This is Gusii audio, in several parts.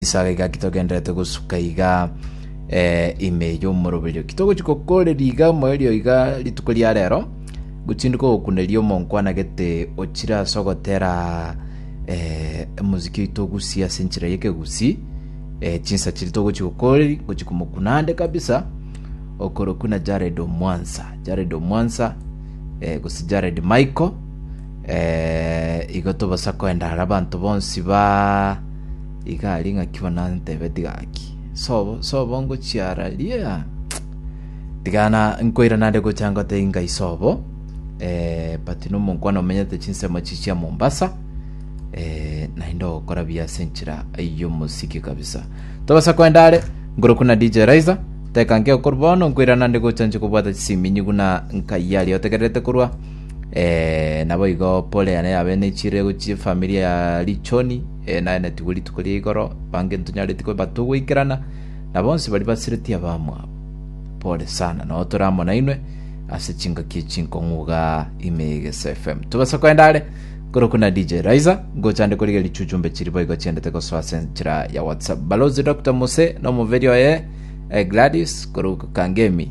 Esaga egaki togendererete gosuka iga eh, ime y'omoroberio. Kitogochi gokoreria iga moerio iga rituko ria rero, gotinduka gokuneria omonkwanagete ochire ase ogotera eh, omoziki oito ogusie ase enchera y'ekegusi eh, chinsa chiri togochi gokoreri gochi komokunande kabisa okoroku na Jared Omwansa Jared Omwansa eh, gose Jared Michael eh, igo tobasa koenda ara abanto bonsi ba Iga aria ng'aki bono ntebe tiga ng'aki. Sobo, sobo ngochiara ria. Tiga na nkoira nande gocha ngote inga isobo. Eh, but no monkwana omenyete chinsemo chichia Mombasa. Eh, naende ogokora biya ase enchera yo mosiki kabisa. Tobasa kwenda are, ngoro kuna DJ Raiza. Teka nke okor bono nkoira nande gocha nche kobwata chisiminyi guna nkaiyari otegererete korwa. Eh, naboigo pore yane yabe nechirego chi'efamiri ya Lichoni, eh, naenetigwe rituko ria igoro, bange ntonyareti kwebata ogweikerana, na bonsi baria basireti abamwabo. Pore sana, nao tore amo nainwe ase chingaki echinkong'uga ime ya Egeso FM. Tobasa koenda are, korokwa na DJ Raiza, ngocha ande korigia richuchumbe chiri boigo chiendete gosoa ase enchera ya WhatsApp. Balozi Dr. Mose, na omoberi oye, eh, Gladys, korokwa Kangemi.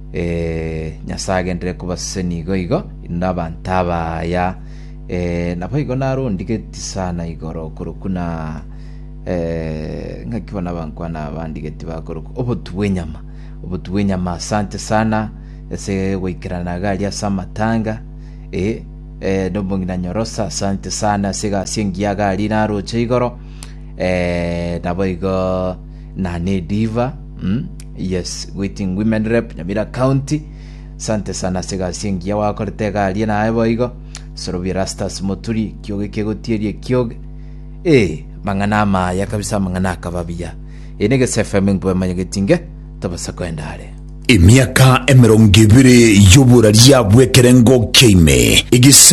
Ee, Nyasae agenderere kobasesenia nigo igo, inde abanto abaya. Ee, naboigo narondigetie sana igoro okorokwa na ee, ng'aki bono abankwana bandigetie bakorokwa obotu bw'enyama, obotu bw'enyama. Asante sana ase goikerana iga aria ase amatanga. Ee, ee, nomong'ina Nyorosa, asante sana ase egasi engiya iga aria naroche igoro. Ee, naboigo na nediva mm, yes waiting women rep nyamira county sante sana ase egasi engiya gwakorete egarie naye boigo sorobi erastus moturi kioge kegotierie kioge ee mang'ana amaya kabisa amang'ana akaba biya eye ne gese fm enkube manya getinge tobasa kwenda are Emiaka emerongo ebere y'oborari yabwekerengo kia ime, egise